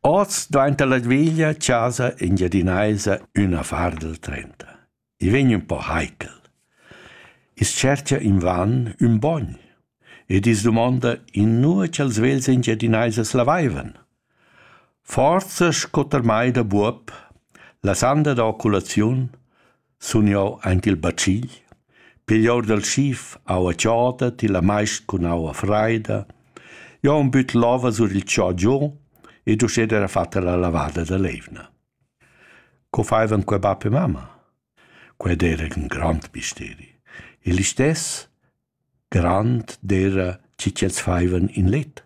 Oz dvainta la veglia chasa engiadinaisa üna fardel trenta. I vegn ün po heikel. I's tschercha invan ün bogn ed i's dumonda inua cha'ls vegls engiadinaisas lavaivan. Forsa sco termai da buob, la sanda da oculaziun, sun jeu aint il bacigl, pigl or dal schif aua chauda, tilla maist cun aua fraida. Jeu ho büt l'ova sur il chò giù ed uschè era fatta la lavada da l'eivna. Co faivan quei bab e mamma? Quei era ün grand misteri. Il istess grand dera chi ch'els faivan in let.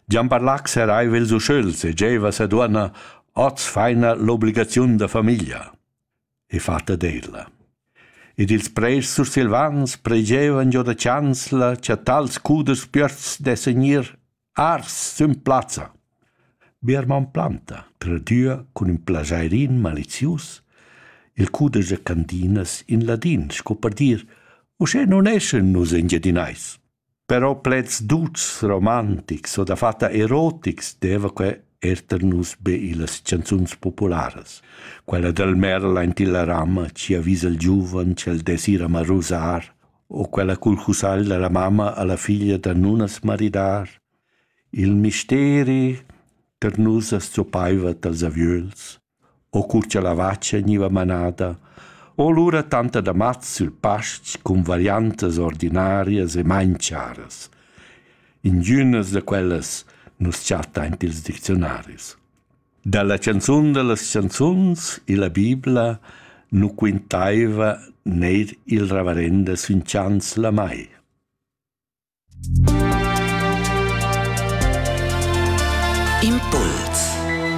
Gian Barlac seraiva ils uschels e gieva sa duonna oz faina l'obligaziun da famiglia. e fatta d'ella. Ed ils prers sursilvans pregevan giò da chansla cha tals cuders piösts dessan gnir ars sün plazza. Biermann Planta tradüa cun ün plajairin malizius il cuder da cantinas in ladin, sco per dir «Uschè nun eschan nus engiadinais». Però pleds tuts romantics o dafatta erotics deva que eir tar nus be illas chanzuns popularas. Quella dal merl aint illa ramma chi avisa il giuvan ch'el desira amà rusar o quella cul cusagl da la mamma a la figlia da nun as maridar. Il misteri tar nus as zoppaiva tals aviöls. o cur cha la vacha gniva manada, o lura tanta damats sül pastg cun variantas ordinarias e main charas. Ingünas da quellas nu's chatta aint ils dicziunaris. Da la chanzun da las chanzuns illa Bibla nu quintaiva neir il ravarenda sün chants la mai. Impuls